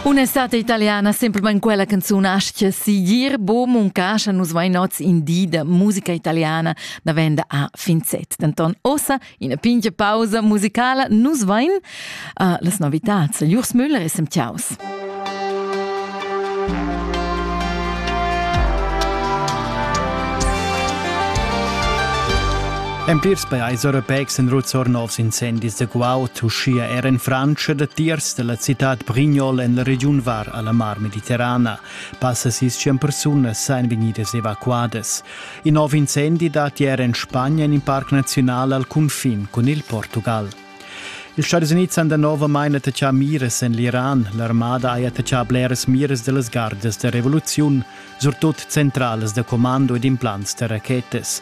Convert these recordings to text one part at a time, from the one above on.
Un'estate italiana, semplamain quella canzun aschia sigir, bo muncascha nus mai nots in di da musica italiana da venda a Finzet. Denton ossa, ina pintga pausa musicala, nus vain uh, las novitats, Jurs Müller e Semtiaus. En plirs pajais europeics èn ruts or novs incendis da guaud, uschia er en Frantscha, datiers da la citad Brignol en la regiun var a la Mar Mediterrana. Passa sis tschient persunas èn vegnidas evacuadas. In nov incendi dat ier en Spagna en in parc naziunal al cunfin cun il Portugal. Ils Stadis Unids han danovamain attachà miras en l'Iran. L'armada ha attachà bleras miras da las gardas da revoluziun, surtut centralas da commando ed implants da rachetas.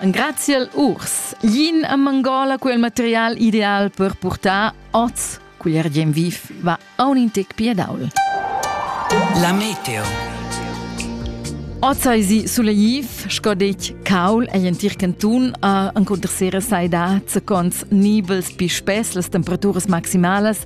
Engraziel urs. Yin a Mangola quel material ideal per portar oz cugl ergien viv va aun in tec piadaul. La meteo. Oz ei si suleiv, sco detg caul ei entir cantun a encontrar sera sai da zacons nibels pi spess las temperaturas maximalas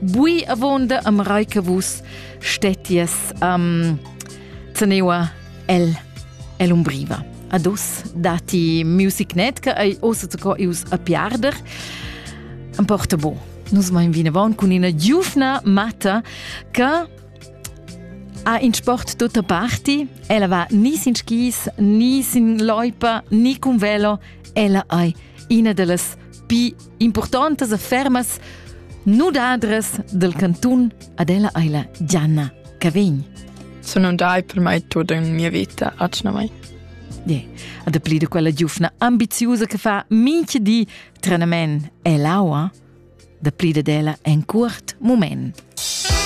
Bui avonda am rai che vus stetties um, zeneua el el umbriva. Adus dati music net che ei ossa zu co ius a piarder. Am porta bo. Nus mein vinavon cun ina giufna matta che ha in sport tutta parti. Ella va ni sin skis, ni sin loipa, ni con velo. Ella ei ina dallas pi Impurtontas affermas nudadras del cantun ad ella eila Gianna Cavegn. Sono dai per mai tut in mia vita, atschna mai. Yeah. Ad pli de quella giufna ambiziusa che fa minche di trenament e l'aua, da pli de della en curt moment.